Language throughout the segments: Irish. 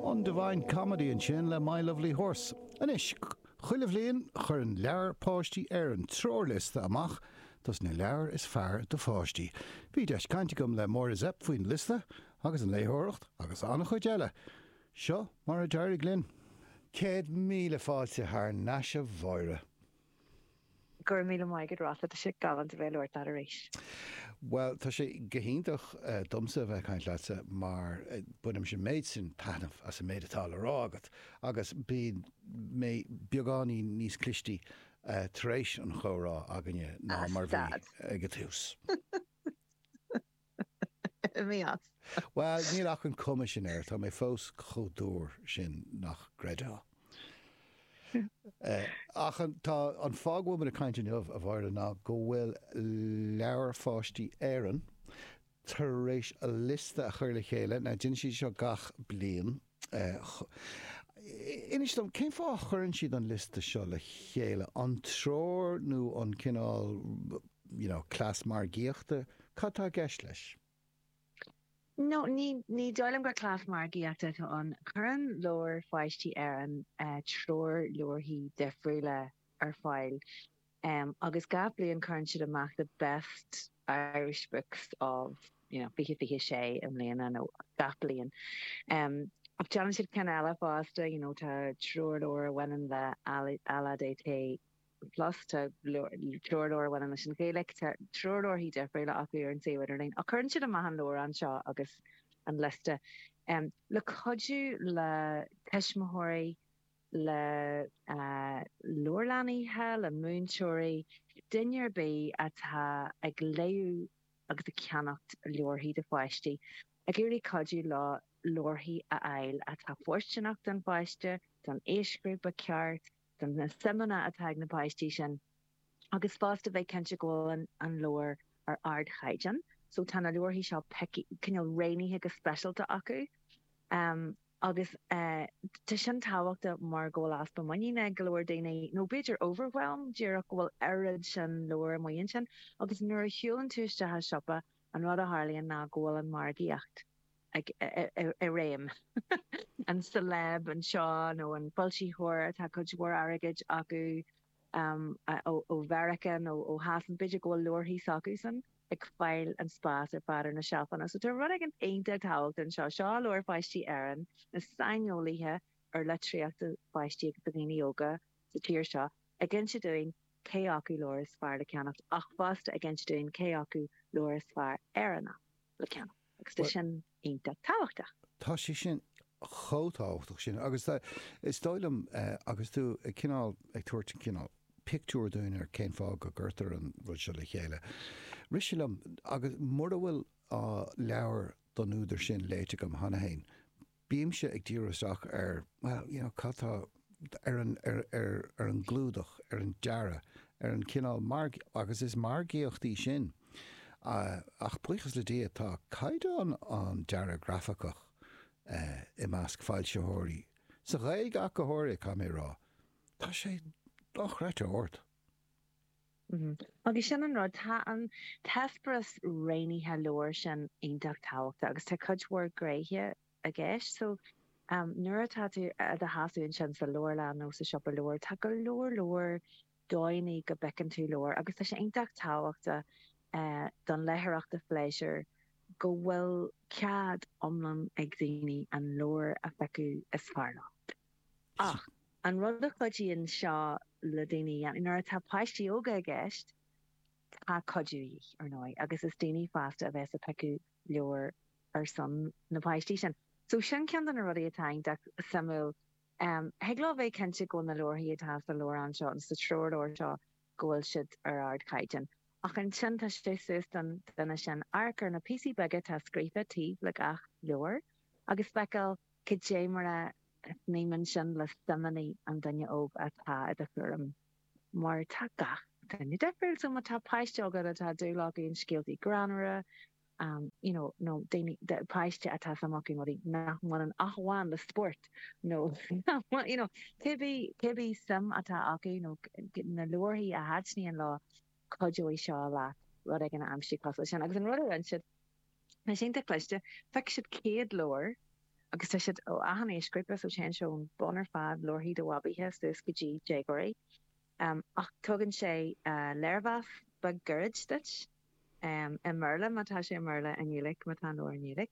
An Divine Comedy ansin le My Lovely Horse. Anois, chuile bhliain cuireann Leabhair Pháistí Éireann treoirliosta amach dos na leabhair is fearr do pháistí. Bhí deis caint agam le Máire Zepf faoin liosta agus an léitheoireacht agus an-chuid eile. Seo mar a d'éirigh linn. Céad míle fáilte thar nais a Mháire. Go raibh míle maith agat Rossa, tá sé galánta bheith ag labhairt leat arís. Bhuel, tá sé go hiontach domsa a bheith ag caint leatsa mar bainimse an méid sin taitneamh as an méid atá le rá agat agus bím beagáinín níos clistí tar éis an chomhrá againne ná mar a bhí ag an tús. Imigh as. Bhuel, níl an chuma sin air, tá mé fós chomh dúr sin nach gcreidfeá. Ach an fáth go bhfuil muid ag caint inniu, a Mháire, ná go bhfuil Leabhair Pháistí Éireann tar éis a liosta a chur le chéile, now déanann siad seo gach bliain, Inis dom, cén fáth a chuireann siad an liosta seo le chéile? An treoir nó an cineál, you know, cleas margaíochta? Cad tá i gceist leis? No, ní, ní dóigh liom gur cleas margaíochta atá ann. Cuireann Leabhair Pháistí Éireann treoirleabharthaí difriúla ar fáil. em, agus gach bliain cuireann siad amach the best Irish books of, you know, 2026 i mbliana nó gach bliain. em, ach déanann siad cinn eile fosta, you know, tá treoirleabhar a bhaineann le LADT plus, tá treoirleabhar a bhaineann leis an Ghaeilge, tá treoirleabharthaí difriúla acu ar an suíomh idirlín, ach cuireann siad amach an leabhrán seo agus an liosta, em, le cuidiú le tuismitheoirí, le leabharlannaithe, le múinteoirí, duine ar bith atá ag léamh agus ag ceannacht leabharthaí do pháistí, ag iarraidh cuidiú leo leabharthaí a fháil atá fóirsteanach don pháiste, don aoisghrúpa ceart, do na suimeanna atá ag na páistí sin, agus fosta bheith cinnte go bhfuil an leabhar ar ardchaighdeán. So tá na leabharthaí seo cineál roghnaithe go speisialta acu. agus tá sin tábhachtach mar go bhfuil easpa muiníne ag go leor daoine, nó b'fhéidir overwhelm díreach go bhfuil oiread sin leabhar amuigh ansin, agus nuair a shiúlann tú isteach i siopa, an rud a tharlaíonn ná go bhfuil an mhargaíocht i réim, an celeb anseo nó an foilsitheoir atá cuid mhór airgid acu, ó Mheiriceá nó ó Shasana, b'fhéidir go bhfuil leabharthaí s'acusan ag fáil an spás ar fad ar na seilfeanna. So tá rud éigin iontach tábhachtach anseo. Seo Leabhair Pháistí Éireann, na saineolaithe ar litríocht do pháistí agus do dhaoine óga sa tír seo ag inse dúinn cé acu leabhar is fearr le ceannacht ach fosta ag inse dúinn cé acu leabhar is fearr Éireannach le ceannacht. Agus tá sin iontach tábhachtach. Tá sé sin chomh tábhachtach sin agus is dóigh liom agus tú cineál ag tabhairt cineál pictiúr dúinn ar cén fáth go gcuirtear an rud seo le chéile. Rith sé liom agus mura bhfuil leabhar don údar sin léite agam cheana féin, Bímse ag díriú isteach ar, bhuel, you know, cad tá, ar an, ar, ar, ar an gclúdach, ar an dearadh, ar an chineál marg, agus is margaíocht í sin, ach buíochas le Dia tá caighdeán an dearaidh grafach i measc foilsitheoirí, sa Ghaeilge ach go háirithe, caithfidh mé a rá, tá sé dochreidte ard. Agus sin an rud, tá an t-eispéireas roghnaithe leabhar sin iontach tábhachtach agus tá cuid mhór gnéithe i gceist. So, nuair atá tú i do sheasamh ansin sa leabharlann nó sa siopa leabhar, tá go leor leor dóigheanna go bhfeiceann tú leabhair agus tá sé iontach tábhachtach don léitheoireacht phléisiúir go bhfuil cead iomlán ag daoine an leabhar a phiocadh is fearr leo. Ach. An rud a chuidíonn seo le daoine a dhéanamh, nuair atá páistí óga i gceist, tá cuidiú de dhíth, ar ndóigh, agus is daoine fásta a bheas ag piocadh leabhar ar son na bpáistí sin. So sin ceann de na rudaí atá iontach suimiúil. Thig leo bheith cinnte go bhfuil na leabharthaí atá sa leabhrán seo nó sa treoirleabhar seo, go bhfuil siad ar ardchaighdeán. Ach ansin tá sé suas don duine sin amharc ar na píosaí beaga atá scríofa taobh le gach leabhar agus feiceáil, Cad é mar a shníomhann sin le suimeanna an duine óg atá i do chúram, mar tá gach duine difriúil, so má tá páiste agat atá dúil acu in scéaltaí greannmhara you know nó daoine, páiste atá suim acu in rudaí nach mbaineann ach amháin le spórt nó you know cibé suim atá acu nó na leabharthaí a thaitníonn leo, cuideoidh seo leat rud éigin a aimsiú cosúil leis sin. Agus an rud a rinne siad, atá iontach cliste, phioc siad 100 leabhar agus tá siad ó achan aoisghrúpa, so téann sé ón mbun ar fad, leabharthaí do bhabaithe, suas go dtí déagóirí. Ach tugann sé léirmheas beag gairid duit, i mBéarla má tá sé i mBéarla, i nGaeilge má tá an leabhar i nGaeilge,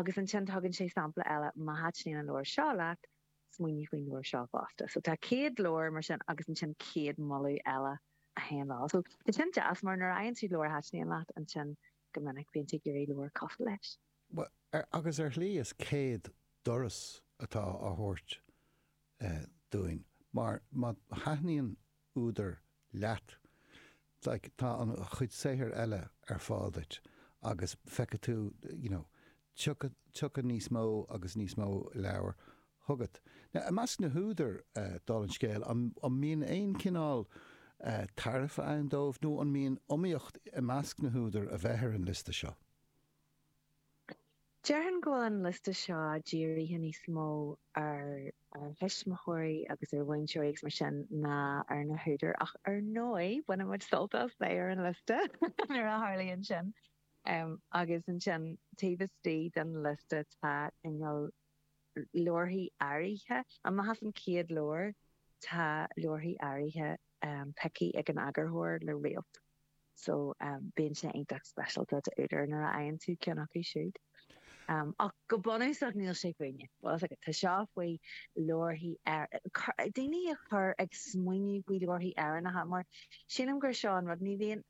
agus ansin tugann sé sampla eile, má thaitníonn an leabhar seo leat, Smaoinigh faoin leabhar seo fosta. So tá 100 leabhar mar sin agus ansin 100 moladh eile a théann leo. So tá sin deas mar nuair a fhaigheann tú leabhar a thaitníonn leat ansin go minic bíonn tú ag iarraidh leabhar cosúil leis. Bhuel, agus ar shlí is 100 doras atá á thabhairt dúinn mar má thaitníonn údar leat, tá a chuid saothair eile ar fáil duit agus feicfidh tú you know tiocfaidh níos mó agus níos mó leabhar chugat. Now i measc na húdair, dála an scéil, an mbíonn aon chineál tairbhe ann dóibh nó an mbíonn iomaíocht i measc na húdair a bheith ar an liosta seo? Déarfainn go bhfuil an liosta seo dírithe níos mó ar thuismitheoirí agus ar mhúinteoirí agus mar sin ná ar na húdair ach ar ndóigh baineann muid sult as bheith ar an liosta nuair a tharlaíonn sin. Agus ansin taobh istigh den liosta tá inneall. Leabharthaí áirithe amach as an gcéad leabhar, tá leabharthaí áirithe pioctha ag an eagarthóir le réalt so bíonn sé iontach speisialta d'údair nuair a fhaigheann tú ceann acu siúd. Ach go bunúsach níl sé fúinne. Tá seo faoi leabharthaí, daoine a chur ag smaoineamh faoi leabharthaí Éireannacha mar sílim gur seo an rud, ní bhíonn,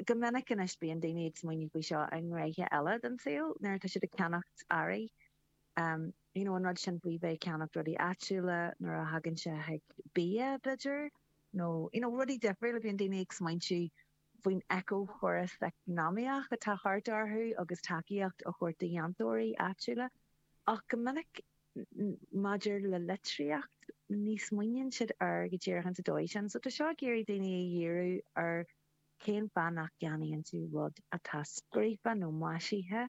Go minic anois bíonn daoine ag smaointiú faoi seo i ngnéithe eile den saol, nuair atá siad ag ceannacht earraí, you know an rud sin faoi bheith ag ceannacht rudaí áitiúla, nuair a thagann sé chuig bia b'fheidir nó you know rudaí difriúla bíonn daoine ag smaointiú faoin eiceachóras eacnamaíoch atá thart orthu agus tacaíocht a thabhairt do dhéantóirí áitiúla ach go minic Maidir le litríocht, ní smaoiníonn siad air go díreach ins an dóigh sin, so tá seo ag iarraidh daoine a dhíriú ar cén fáth nach gceannaíonn tú rud atá scríofa nó maisithe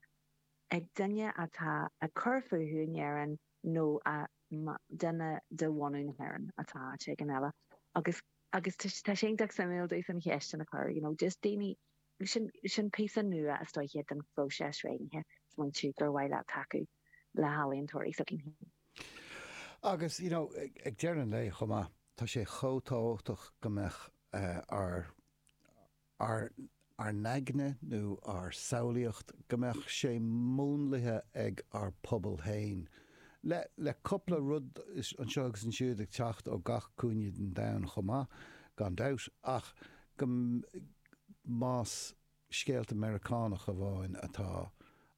ag duine atá ag cur fúthu in Éirinn nó duine de bhunadh na hÉireann atá áit éigin eile agus agus tá sé iontach suimiúil domsa an cheist sin a chur, you know, just daoine. Sin píosa nua is dóiche den phróiseas smaointe ansin gur mhaith leat tacú le healaíontóirí s'againn. Agus, you know, ag deireadh an lae chomh maith, tá sé chomh tábhachtach go mbeadh ár, ár, ár n-aigne nó ár samhlaíocht, go mbeadh sé múnlaithe ag ár bpobal féin. Le, le cupla rud anseo agus ansiúd ag teacht ó gach cúinne den domhan chomh maith, gan dabht, ach go, más scéalta Meiriceánach amháin atá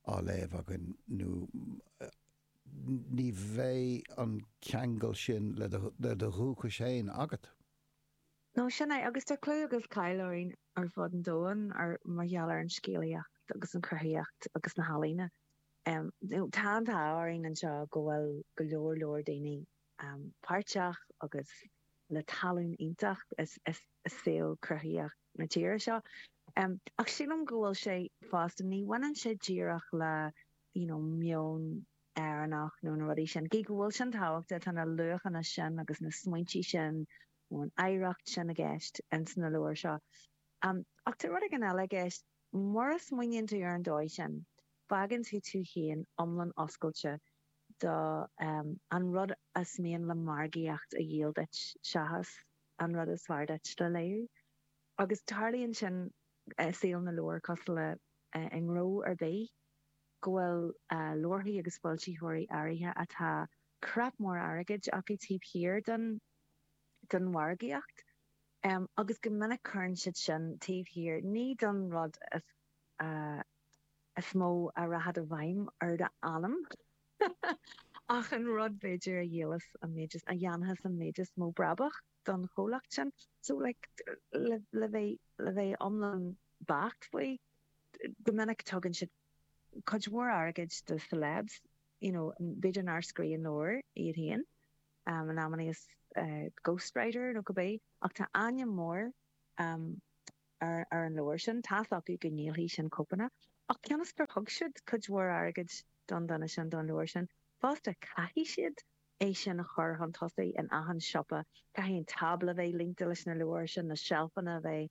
á léamh againn nó ní bheidh an ceangal sin le do dhúchas féin agat. Nó sin é, agus tá clú agus cáil orainn ar fud an domhain mar gheall ar an scéalaíocht agus an chruthaitheacht agus na healaíona. Tá an t-ádh orainn anseo go bhfuil go leor leor daoine páirteach agus le tallann iontach i saol cruthaitheach na tíre seo. Ach sílim go bhfuil sé fosta, ní bhaineann sé díreach le you know meon Éireannach nó na rudaí sin, gidh go bhfuil sin tábhachtach, tá na luachanna sin agus na smaointe sin nó an oidhreacht sin i gceist ins na leabhair seo. Ach tá rud éigin eile i gceist, mura smaoiníonn tú ar an dóigh sin, fágann tú tú féin iomlán oscailte, do an rud is mian le margaíocht a dhíol duit seachas an rud is fearr duit le léiriú. Agus tarlaíonn sin i saol na leabhar cosúil le i ngnó ar bith, go bhfuil leabharthaí agus foilsitheoirí áirithe atá creach mhór airgid acu taobh thiar den mhargaíocht agus go minic cuireann siad sin taobh thiar, ní don rud is is mó a rachas i bhfeidhm ar do anam. Ach an rud b'fhéidir a dhíolfas an méid is, a dhéanfas an méid is mó brabaigh don chomhlacht sin. So like le, le bheith, le bheith iomlán beacht faoi, go minic tugann siad cuid mhór airgid do celebs, you know, b'fhéidir nár scríobhann leabhar iad féin, in amannaí is ghost writer nó cibé, ach tá ainm mór, ar an leabhar sin, tá's acu go ndíolfaidh sin cóipeanna, ach cionn is gur thug siad cuid mhór airgid don duine sin, don leabhar sin, fosta, caithfidh siad é sin a chur chun tosaigh in achan siopa, caithfidh an tábla a bheith líonta leis na leabhair sin, na seilfeanna a bheith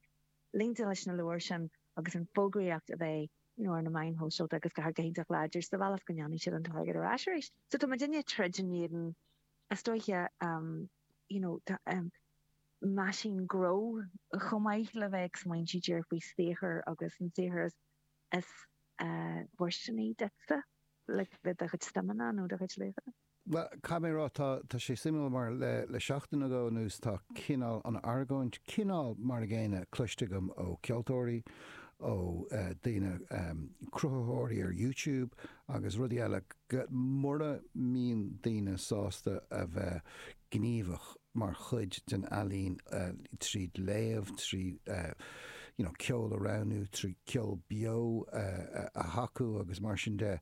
líonta leis na leabhair sin agus an fhógraíocht a bheith, you know, ar na meáin shóisialta agus gach rud go hiontach láidir sa bhealach go ndéanfaidh siad an t-airgead ar ais arís. So tá muidinne ag troid in éadan, is dóiche, you know, tá, meaisín gnó, chomh maith le bheith ag smaointiú díreach faoi saothar agus an saothar is fóirsteanaí duitse le do chuid suimeanna nó do chuid luachanna. Caithfidh mé a rá, tá sé suimiúil mar le seachtain nó dhó anuas tá cineál an argóint, cineál mar an gcéanna, cloiste agam ó cheoltóirí, ó daoine, cruthaitheoirí ar YouTube agus rudaí eile, go mura mbíonn daoine sásta a bheith gníomhach, mar chuid den ealaín tríd léamh, trí you know ceol a roghnú, trí ceol beo a thacú agus mar sin de.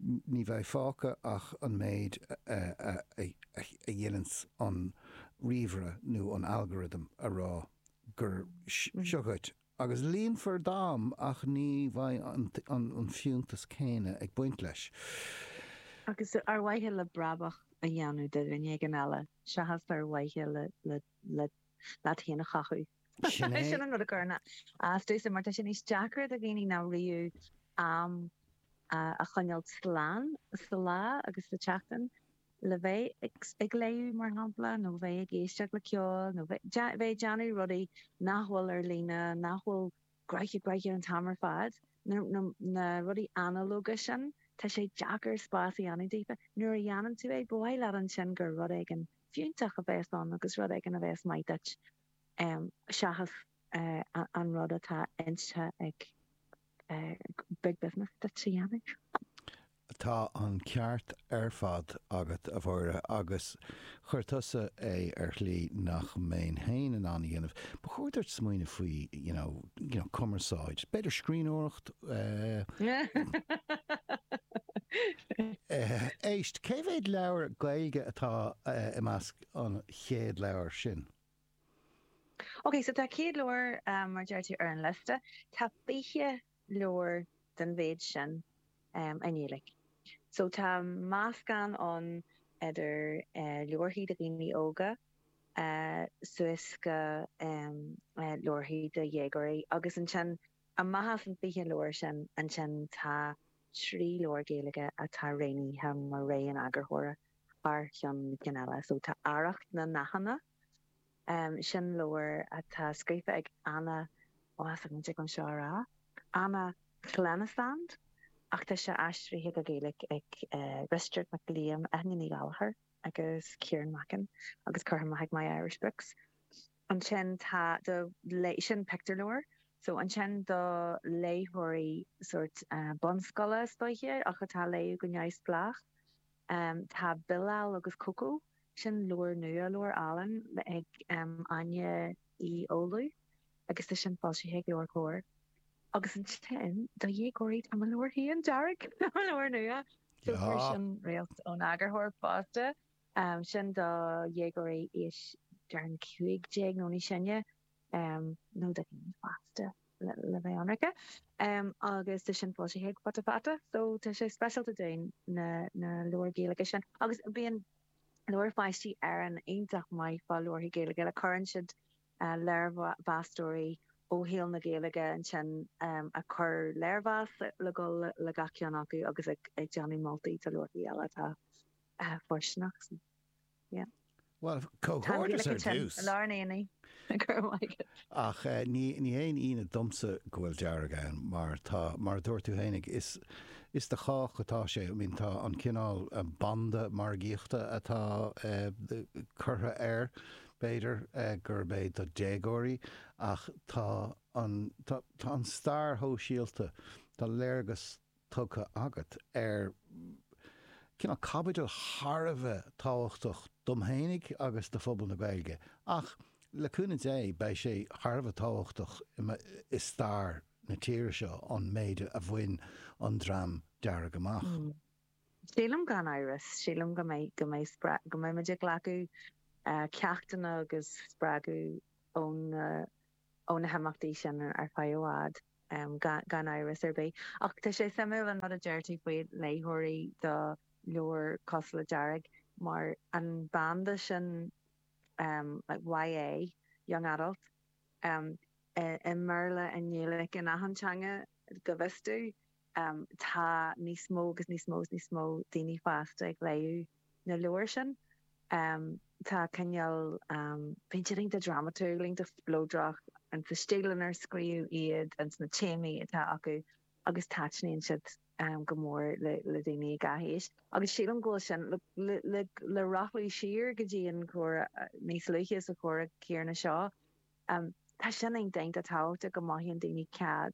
Ní bheidh fágtha ach an méid a dhéananns an ríomhaire nó an algorithm a rá gur seo ceart Agus líonfar d'am ach ní bheidh an fiúntas céanna ag baint leis. Agus ar mhaithe le brabach a dhéanamh do dhuine éigin eile seachas ar mhaithe leat féin a chothú. Sin é. Sin an rud a chuireann as domhsa mar tá sé níos deacra do dhaoine ná riamh am a choinneáil slán sa lá agus sa tseachtain. le bheith ag léamh, mar shampla, nó bheith ag éisteacht le ceol, nó bheith ag déanamh rudaí nach bhfuil ar líne, nach bhfuil gnoitheach gnoitheach an t-am ar fad, na rudaí analógacha sin, tá sé deacair spás a dhéanamh daofa. Nuair a dhéanann tú é, ba mhaith leat ansin gur rud éigin fiúntach a bheas ann agus rud éigin a bheas maith duit seachas, an rud atá inste ag Big Business duit a dhéanamh. Tá an ceart ar fad agat, a Mháire, agus chuir tusa é ar shlí nach mbeinn féin in ann a dhéanamh. Ba chóir duit smaoineamh faoi, you know, you know, cumarsáid, b'fhéidir scríbhneoireacht, eh, éist, cé mhéad leabhar Gaeilge atá i measc an chéad leabhar sin? OK, so tá 100 leabhar, mar a deir tú, ar an liosta. Tá 20 leabhar den mhéid sin i nGaeilge. So tá meascán ann idir leabharthaí do dhaoine óga suas go leabharthaí do dhéagóirí agus ansin amach as an 20 leabhar sin ansin tá trí leabhar Gaeilge atá roghnaithe mar rogha an eagarthóra. thar cheann na cinn eile. So tá Arracht na nDathanna, sin leabhar atá scríofa ag Anna, ó níl fhios an dtig liom seo a rá, Anna Llenas ach tá sé aistrithe go Gaeilge ag Risteárd Mac Liam, Eithne Ní Ghallchobhair agus Ciarán Mackin agus curtha amach ag My Irish Books. ansin tá do léith, sin pictiúrleabhar, so ansin do léitheoirí sórt bunscoile is dóiche ach atá ag léamh go neamhspleách tá Bilal agus Coco, sin leabhar nua, leabhar álainn ag Áine Uí Fhoghlú agus tá sin foilsithe ag LeabhairCOMHAR. Agus ansin do dhéagóirí tá mo leabhar féin, Dearg, mo leabhar nua, so tá sin roghnaithe ón eagarthóir fosta. am sin do dhéagóirí aois dream 15 bliain nó níos sine nó do dhaoine fásta le bheith ionraice agus tá sin foilsithe ag Futa Fata so tá sé speisialta dúinn na leabhair Ghaeilge sin agus bíonn Leabhair Pháistí Éireann iontach maith fá leabharthaí Gaeilge cuireann siad léirmheastóirí ó shaol na Gaeilge ansin ag cur léirmheas le dul le gach ceann acu agus ag déanamh moltaí do leabharthaí eile atá Ah, fóirsteanach fosta. Yeah. Well, comhghairdeas ar dtús. Lár an aonaigh. Go raibh maith agat. Ach ní haon ionadh domsa go bhfuil Dearg ann mar tá, mar a dúirt tú féin, ag, is, is do chách atá sé. I mean, tá an cineál banda margaíochta atá curtha air, b'fhéidir, gurb é do déagóirí ach tá an, tá, tá an stair shóisialta, tá léargas tugtha agat ar cineál caibidil thar a bheith tábhachtach dom fhéinig agus do phobal na Gaeilge, ach le cúnamh Dé beidh sé thar a bheith tábhachtach i stair na tíre seo, an méid a bhain an Dream Dearg amach. Sílim gan amhras, sílim go mbeidh, go mbeidh, go mbeimid ag glacadh ceachtanna agus spreagadh ó na. ó na himeachtaí sin ar feadh i bhfad, gan amhras ar bith. Ach tá sé suimiúil an rud a deir tú faoi léitheoirí do leabhar cosúil le Dearg mar an banda sin YA, Young Adult, i mBéarla, i nGaeilge, in achan teanga go bhfios domh. Tá níos mó agus níos mó is níos mó daoine fásta ag léamh na leabhar sin. Tá cineál, bíonn siad iontach drámatúil, iontach spleodrach in sa stíl inar scríobhadh iad, in sna téamaí atá acu agus taitníonn siad go mór le daoine i ngach aois. Agus sílim go bhfuil sin, le rothlú siar go dtí an comhrá níos luaithe sa chomhrá céanna seo, tá sin iontach tábhachtach go mothaíonn daoine cead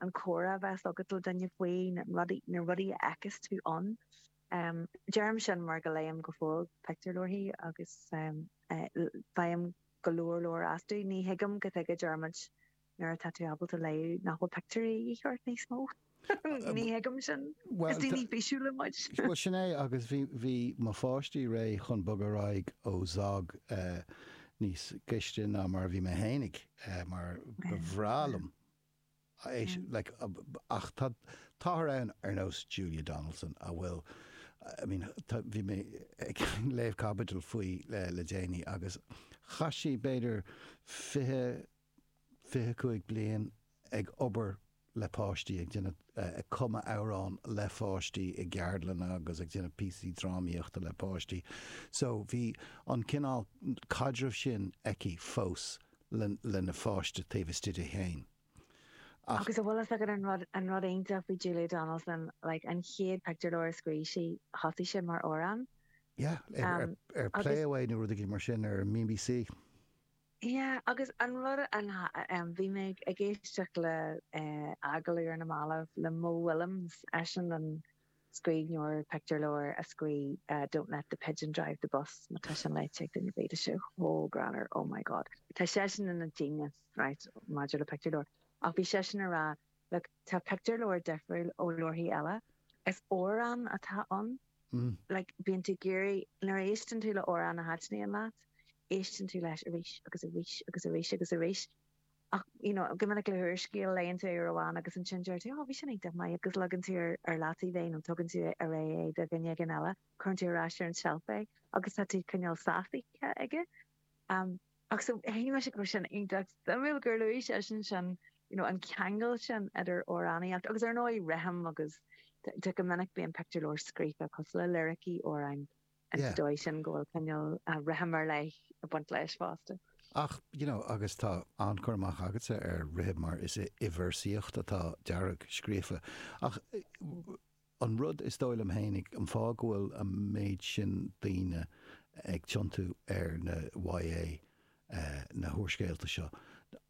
an comhrá a bheas leat le duine faoi na rudaí a fheiceas tú ann. Deirim sin mar go léim go fóill pictiúrleabharthaí agus faighim go leor leor astu. Ní thuigim cad chuige, a Dhiarmuid nuair atá tú ábalta léamh nach bhfuil pictiúirí de dhíth ort níos mó. Ní thuigim sin. Is daoine físiúla muid. Bhuel, sin é agus bhí mo pháistí réidh chun bogadh ar aghaidh ó Zog níos gaiste ná mar a bhí mé fhéinig mar ba bhreá liom. Ach táthar ann ar nós Julia Donaldson a bhfuil, I mean, bhí mé ag léamh caibidil faoi le déanaí agus chaith sí b'fhéidir fiche, fiche cúig bliain ag obair le páistí, ag déanamh, ag cumadh amhrán le pháistí i gceardlanna agus ag déanamh píosaí drámaíochta le páistí. So bhí an cineál caidreamh sin aici fós lena pháiste taobh istigh di féin. Ach. Agus a bhfuil fhios agat an rud iontach faoi Julia Donaldson, like, an chéad pictiúrleabhar a scríobh sí, thosaigh sé mar amhrán. Yeah, ar Play Away nó rud éigin mar sin ar an BBC. Yeah, agus an rud, bhí mé ag éisteacht le agallamh ar na mallaibh le Mo Willems, eisean an. scríbhneoir pictiúrleabhair a scríobh Don't let the pigeon drive the bus má tá sin léite ag duine ar bith tá sé chomh greannmhar oh my god tá seisean ina genius right maidir le pictiúrleabhair ach bhí seisean ag rá look tá pictiúrleabhair difriúil ó leabharthaí eile is amhrán atá ann like bíonn tú ag iarraidh nuair a éisteann tú le amhrán a thaitníonn leat éisteann tú leis arís agus arís agus arís agus arís ach you know go minic le húrscéal léann tú é uair amháin agus ansin deir tú 'oh bhí sin iontach maith' agus leagann tú ar leataobh é nó tugann tú ar aghaidh é do dhuine éigin eile, cuireann tú ar ais ar an tseilf é agus tá tú cineál sásaithe aige. Um ach so shíl mise go raibh sin iontach suimiúil gur luaigh seisean sin you know an ceangal sin idir amhránaíocht agus ar ndóigh rithim agus go minic bíonn pictiúrleabhair scríofa cosúil le liricí amhráin. An Yeah. dóigh sin go bhfuil cineál rithim ar leith ag baint leis fosta. Ach, you know, agus tá an-chur amach agatsa ar rithim mar is i i bhvéarsaíocht atá Dearg scríofa. Ach an rud is dóigh liom féinig, an fáth go bhfuil an méid sin daoine ag tiontú ar na YA, eh, na húrscéalta seo,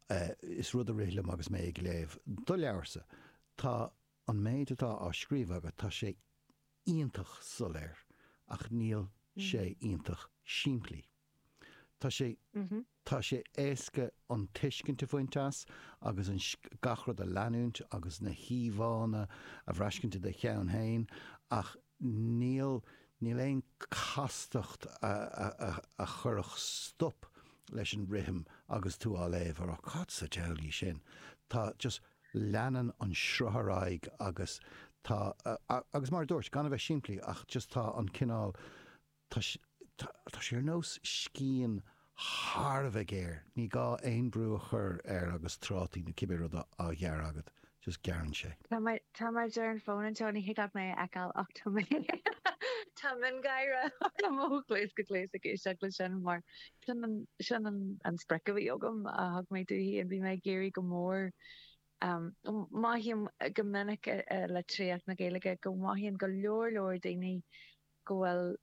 eh, is rud a rith liom agus mé ag léamh do leabharsa, tá An méid atá á scríobh agat, tá sé iontach soiléir ach níl sé iontach simplí. Tá sé tá sé éasca an tuiscint a bhaint as agus an gach rud a leanúint agus na híomhánna a bhraiscint i do cheann féin ach níl aon chastacht a chuirfeadh stop leis an rithim agus tú á léamh, ag rá, cad sa diabhal é sin? Tá just, leanann an sruth ar aghaidh agus tá, agus mar a dúirt, gan a bheith simplí ach just tá an cineál Tá sé ar nós scian thar a bheith géar, ní gá aon bhrú a chur air agus trátaí nó cibé rud á ghearradh agat, just gearrann sé. Tá mé ar an bhfón anseo, ní thig leat mé a fheiceáil ach tá mé, tá miongháire orm ó chluas go cluas ag éisteacht leis sin mar sin é an sprioc a bhí agam a thug mé fúithi and bhí mé ag iarraidh go mór, mothaím go minic i litríocht na Gaeilge go mothaíonn go leor leor daoine go bhfuil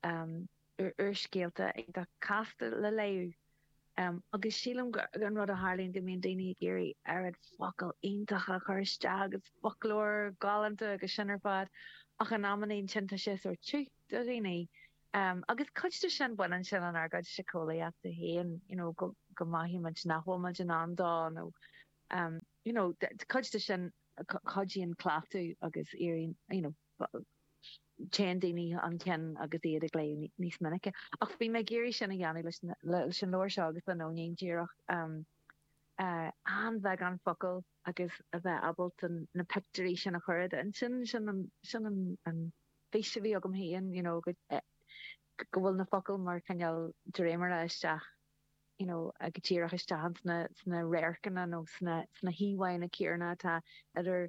úrscéalta atá casta le léamh agus sílim gur an rud a tharlaíonn go mbíonn daoine ag iarraidh oiread focal iontach a chur isteach agus foclóir galánta agus sin ar fad ach in amannaí sin tá sé sórt tiubh do dhaoine agus cuid de sin baineann sin lenár gcuid siceolaíochta féin you know go go mothaíonn muid nach bhfuil muid in ann dó nó you know cuid de sin chuidíonn cleachtadh agus éiríonn you know téann daoine chun cinn agus iad ag léamh níos minice. Ach bhí mé ag iarraidh sin a dhéanamh leis leis an leabhar seo agus le Nóinín díreach an-bheagán focal agus a bheith ábalta na pictiúirí sin a chur i d'intinn. Sin sin an fís a bhí agam féin you know go bhfuil na focail mar cineál dréimire isteach you know go díreach isteach sna radharcanna nó sna híomhánna céanna atá idir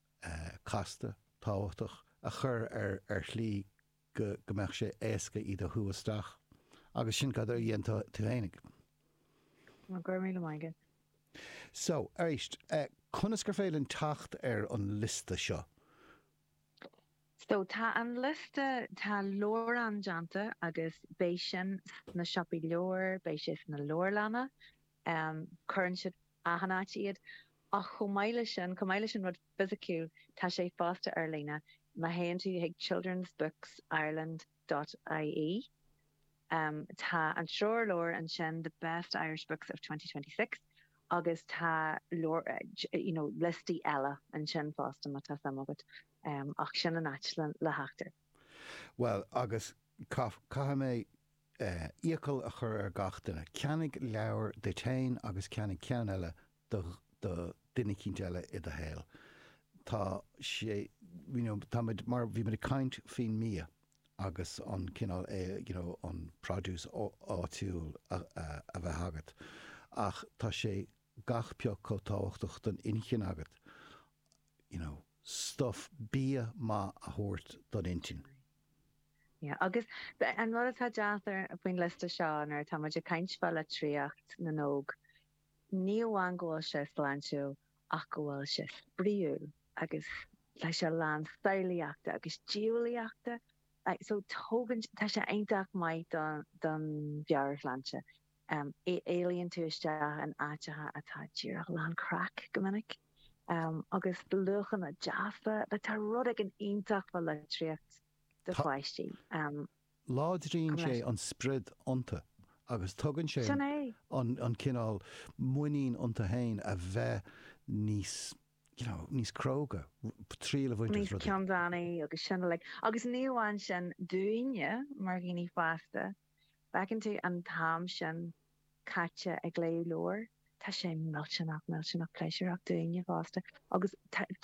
casta, tábhachtach, a chur ar shlí go mbeadh sé éasca iad a shú isteach. Agus sin cad a dhein tú fhéinig. Go raibh míle maith agat. So, arís, conas gur féidir linn teacht ar an liosta seo? So, tá an liosta, tá leabhrán déanta agus beidh sin sna siopaí leabhar, beidh sé sna leabharlanna. cuireann siad achan áit iad ach chomh maith leis sin, chomh maith leis an rud fisiciúil, tá sé fosta ar líne. Má théann tú chuig childrensbooksireland dot ie tá an treoirleabhar ansin, The Best Irish Books of 2026 agus tá lear, you know, liostaí eile ansin fosta má tá suim agat ach sin an áit le theacht air. Bhuel agus caithfidh mé iachall a chur ar gach duine, ceannaigh leabhar duit féin agus ceannaigh ceann eile do do duine eicínt eile i do shaol. Tá sé, you know, tá muid mar, bhí muid ag caint faoin mbia agus an cineál, you know, an produce áitiúil a bheith agat ach tá sé gach pioc chomh tábhachtach don inchinn agat, you know, stuff, bia maith a thabhairt don intinn. Agus an rud atá deas faoin liosta seo, nuair atá muid ag caint fá litríocht na n-óg, ní amháin go bhfuil sé sláintiúil ach go bhfuil sé spraíúil agus tá sé lán samhlaíochta agus diabhlaíochta. So tugann, tá sé iontach maith don mheabhairshláinte. Éalaíonn tú isteach in áiteacha atá díreach lán craic go minic agus luachanna deasa. Tá rud éigin iontach fá litríocht do pháistí. Láidríonn sé an spriod iontu agus tugann sé an cineál muinín iontu féin a bheith níos you know níos cróga, triail a bhaint as rudaí. Níos ceanndána agus sin uilig. Agus ní amháin sin dúinne mar dhaoine fásta má fheiceann tú an t-am sin caite ag léamh leabhair, tá sé millteanach, millteanach pléisiúrach dúinne fosta agus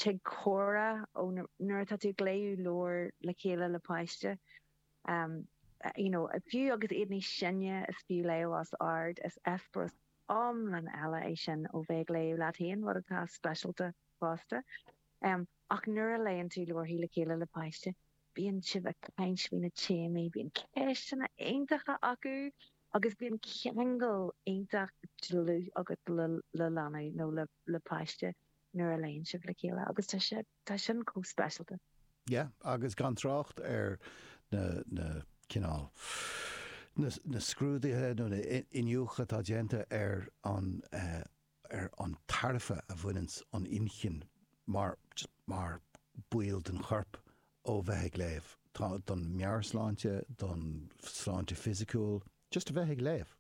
tig comhrá ó nuair atá tú ag léamh leabhair le chéile le páiste you know fiú agus iad níos sine is fiú léamh os ard, is eispéireas iomlán eile é sin ó bheith ag léamh leat féin, rud atá speisialta fosta. Ach nuair a léann tú leabharthaí le chéile le páiste, Bíonn sibh ag caint fá na téamaí, bíonn ceisteanna iontacha acu agus bíonn ceangal iontach dlúth agat le leanaí nó le páiste nuair a léann sibh le chéile agus tá sin chomh speisialta. Yeah, agus gan trácht ar na, na, cineál, na, na scrúduithe nó na in, iniúchadh atá déanta ar an, ar an tairbhe a bhaineann an inchinn mar mar ball den chorp ó bheith ag léamh, tá don meabhairshláinte, don sláinte fisiciúil, just a bheith ag léamh,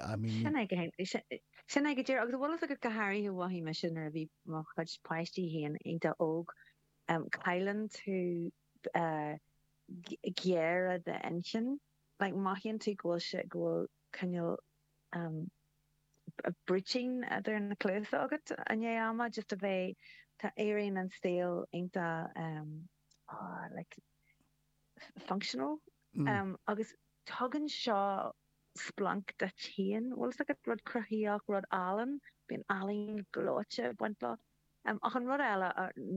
I mean ní. Sin é go hé, sin é go díreach, agus tá a fhios agat go háirithe mhothaigh mise nuair a bhí mo chuid páistí féin iontach óg, cailleann tú géire d'inchinne, like mothaíonn tú go bhfuil sé, go bhfuil cineál Britain idir na cluasa agat i ndiaidh ama just a bheith tá éiríonn an saol iontach like functional agus tugann sé splanc duit féin bhfuil fhios agat rud cruthaíoch rud álainn bíonn ealaín gleoite ag baint leo ach an rud eile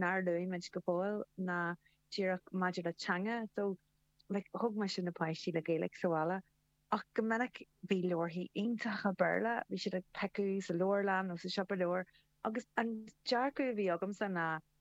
nár luaigh muid go fóill ná díreach maidir le teanga so like thóg mise na páistí le Gaeilge sa bhaile ach go minic bhí leabharthaí iontacha Béarla, bhí siad ag piocadh sa leabharlann nó sa siopa leabhar agus an dearcadh a bhí agamsa ná